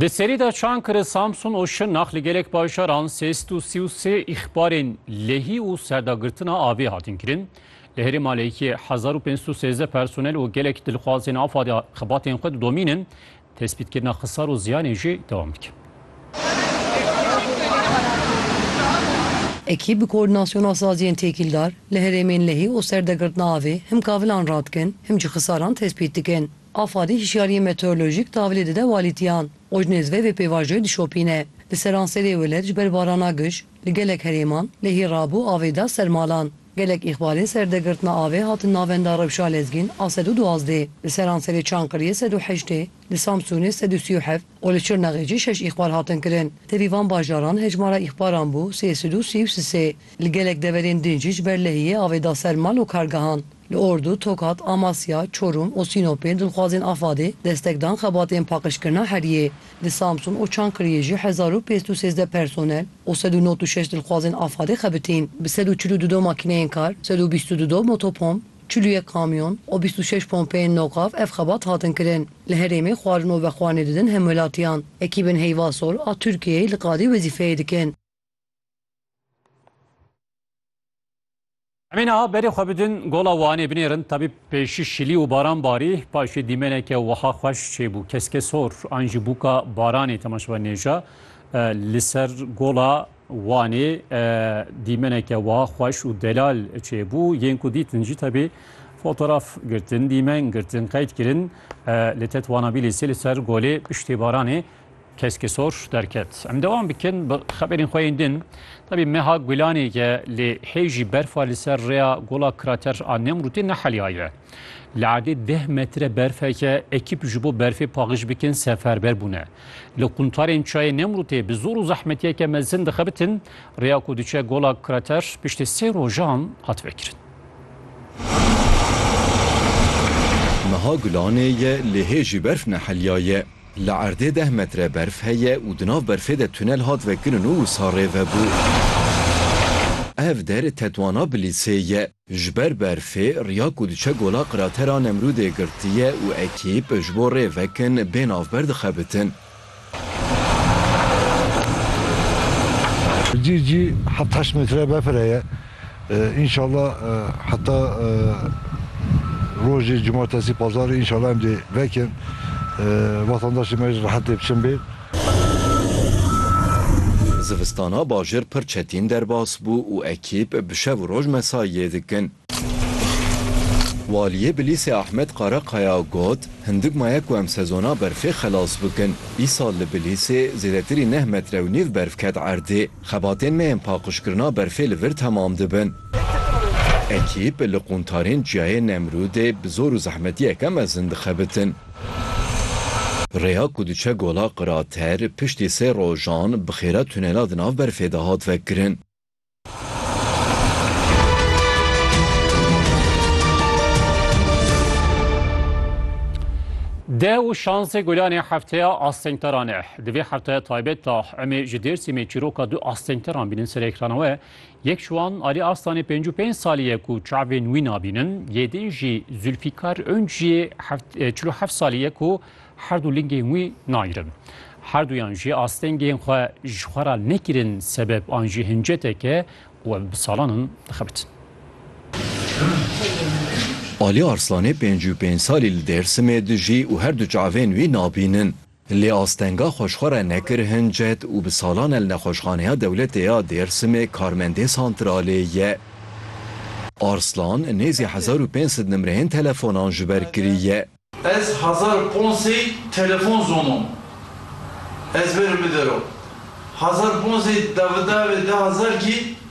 Di serî de Çankırı, Samsun û Şırnak li gelek bajaran sê sed û sî û sê îxbarên lehî û serdagirtina avê hatin kirin. Li herêma Lêkê hezar û pênc sed û sêzdeh personel û gelek dilxwazên afa de xebatên xwe didomîn in. Tespîtkirina xisar û ziyanên jî dewam dike. Ekî bi koordînasyona saziyên têkîldar li herêmên lehî û serdagirtina avê him kavilan radikin, him jî xisaran tespît dikin. Afadî hişyariyên meteorolojîk tavilê dide walîtiyan û ji nêz ve vê pêvajoyê dişopîne. Li seranserê welat ji ber barana giş li gelek herêman lehî rabû avê da ser malan. Gelek îxbarên ser dergirtina avê hatin navenda rewşa lezgîn a sed û duwazdê, li seranserê Çankiriyê sed û heştê, li Samsûnê sed û sî û heft û li Şirnexê jî şeş îxbar hatin kirin. Tevî van bajaran hejmara îxbaran bû sê sed û sî û sisê. Li gelek deverên din jî ji ber lehiyê avê da ser mal û kargehan. Li Ordu, Tokat, Amasya, Çorum û Sînopê dilxwazên AFAD'ê destek dan xebatên paqijkirina heriyê. Li Samsun û Çankiriyê jî hezar û pênc sed û sêzdeh personel û sed û nod û şeş dilxwazên AFAD'ê xebitîn. Bi sed û çil û du do makîneyên kar, sed û bîst û du do motopomp, çil û yek kamyon û bîst û şeş pompeyên noqaf ev xebat hatin kirin. Li herêmê xwarin û vexwarinê didin hemwelatiyan. Ekîbên Heyva Sol a Tirkiyeyê li qadê wezîfeyê dikin. Emê niha berê xwe bidin gola Wanê binêrin tabî pêşî şilî û baran barî paşê dîmeneke wiha xweş çêbû keske sor an jî bûka baranê temaşevan nêja li ser gola Wanê dîmeneke wiha xweş û delal çêbû yên ku dîtin jî tabî fotoğraf girtin dîmen girtin qeyd kirin li tetwanabî lê sê li ser golê piştê baranê Keskê sor derket. Em devam bikin bi xeberên xwe yên din. Tebî meha gulanê ye lê hê jî berfa li ser rêya gola krater a Nemrûtê neheliyaye. Li erdê deh metre berfeke ekîp ji bo berfê paxij bikin seferber bûne. Li quntarên çayê Nemrûtê bi zor û zehmetiyeke mezin dixebitin, rêya ku diçe gola krater piştî sê rojan hat vekirin. Meha gulanê ye lê hê jî berf neheliyaye. Li erdê deh metre berf heye û di nav berfê de tunel hat vekirin û wisa rêvebû. Ev der tetwana Bilîsê ye. Ji ber berfê riya ku diçe gola Qratera Nemrûdê girtiye û ekîp ji bo rê vekin bê navber dixebitin. Cî cî heft heşt metre befir heye. Înşallah heta rojê cumartesî pazarê înşallah em dê vekin wetandaşê me jî rehet dê biçin bê. Zivistana bajêr pir çetîn derbas bû û ekîp bi şev û roj mesaiyê dikin. Waliyê Bilîsê Ahmet Karakaya got, Hindik maye ku em sezona berfê xelas bikin. Îsal li Bilîsê zêdetirî neh metre û nîv berf ket erdê. Xebatên me yên paqijkirina berfê li vir temam dibin. Ekîp li qûntarên Çiyayê Nemrûdê bi zor û zehmetiyeke mezin dixebitin. Rêya ku diçe Gola Qirater piştî sê rojan bi xêra tunela di nav berfê de hat vekirin. Deh û şansê gulanê hefteya astengteran e. Di vê heftaya taybet de em ê ji Dêrsimê çîroka du astengteran bînin ser êkrana we. Yek ji wan Alî Arslan ê pêncû pênc salî ye ku çavên wî nabînin. Yê din jî Zûlfîkar Ünc jî çil û heft salî ye ku her du lingên wî nagirin. Her duyan jî astengên xwe ji xwe re nekirin sebeb an jî hinceteke ku em bi salan in dixebitin. Alî Arslan ê pêncû pênc salî li Dêrsimê dijî û her du çavên wî nabînin. Lê astenga xwe ji xwe re nekir hin cet û bi salan e li Nexweşxaneya Dewletê ya Dêrsimê karmendê santralê ye. Arslan nêzî hezar û pênc sed nimreyên telefonan ji ber kiriye. Ez hezar û pênc sey telefon zonom ezber û bidero. Hezar û pênc sey devdevê de hezar kî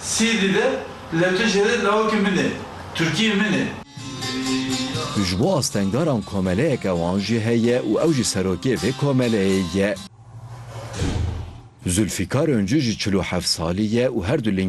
Sîrî de le tu jê re lawikê min î, Tirkiyê min î. Tu ji bo astengaran komeleyeke wan jî heye û ew jî serokê vê komeleyê ye. Zûlfîkar Ûncû jî çil û heft salî ye û her du